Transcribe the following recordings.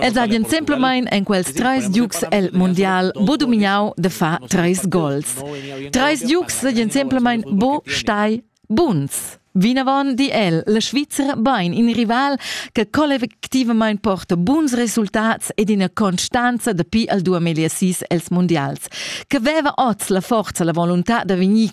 Ed hagen semplamein en quels treis giugs el mundial bo dumignau de far treis gols. Treis giugs seigien semplamein bo stai buns. Vinavon di el, la Svizra bein in rival che collectivament porta buns resultats ed ina constanza dapi al 2006 els mundials, che veva oz la forza, la volontà da vegnir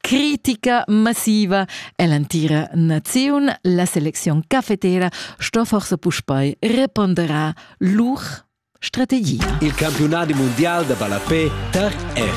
critica massiva e l'entira naziun. La selecziun cafetera sto forse puspei reponderar lur strategia. Il campionat mundial da ballapé tar R.